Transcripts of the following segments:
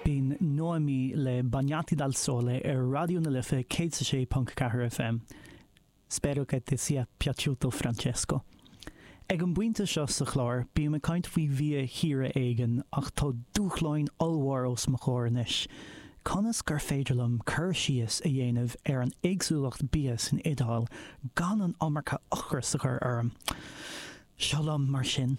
Bhí an Noemi le Bagnati Dal Sole ar Raidió na Life 106.4 FM. Spero che ti sia piaciuto Francesco. Ag an bpointe seo sa chlár bíonn mé ag caint faoi bhia thíre éigin ach tá dúshláin ollmhór os mo chóir anois, conas gur féidir liom cur síos a dhéanamh ar an éagsúlacht bia san Iodáil gan an iomarca ocrais a chur orm? Seo liom mar sin.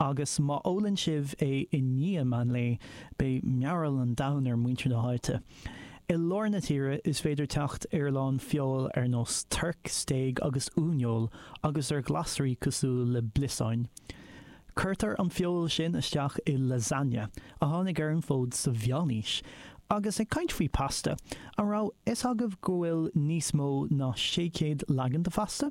Agus má ólann sibh é i ndiaidh meán lae, beidh mearbhall an domhain ar mhuintir na háite. I lár na tíre, is féidir teacht ar a lán feoil ar nós toirc, stéig agus uaineoil agus ar ghlasraí cosúil le bliosáin. Cuirtear an feoil sin isteach i lasagne, a tháinig ar an bhfód sa Mheánaois. Agus ag caint faoi pasta, an raibh fhios agaibh go bhfuil níos mó ná sé chéad leagan de phasta?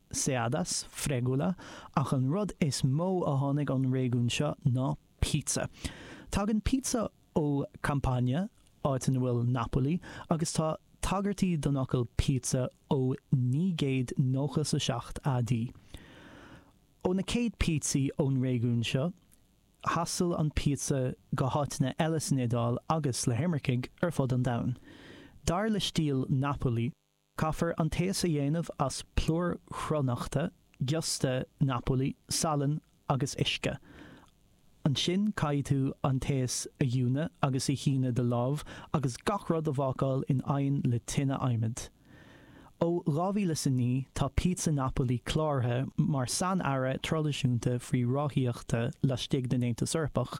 Seadas, Fregula, ach an rud is mó a tháinig ón réigiún seo ná pizza. Tagann pizza ó Campania, áit ina bhfuil Napoli, agus tá tagairtí don fhocal pizza ó naoi gcéad nócha 's a seacht AD. Ó na céad pizze ón réigiún seo, thaistil an pizza go háiteanna eile san Iodáil agus le himircigh ar fud an domhain. Dar le stíl Napoli, Caithfear an taos a dhéanamh as plúr chruithneachta, giosta, Napoli, salann agus uisce. Ansin caithfidh tú an taos a fhuineadh agus a shíneadh de láimh agus gach rud a bhácáil in oigheann le tine adhmaid. Ó 2009 tá pizza Napoli cláraithe mar sain-earra traidisiúnta faoi ráthaíochta laistigh den Aontas Eorpach.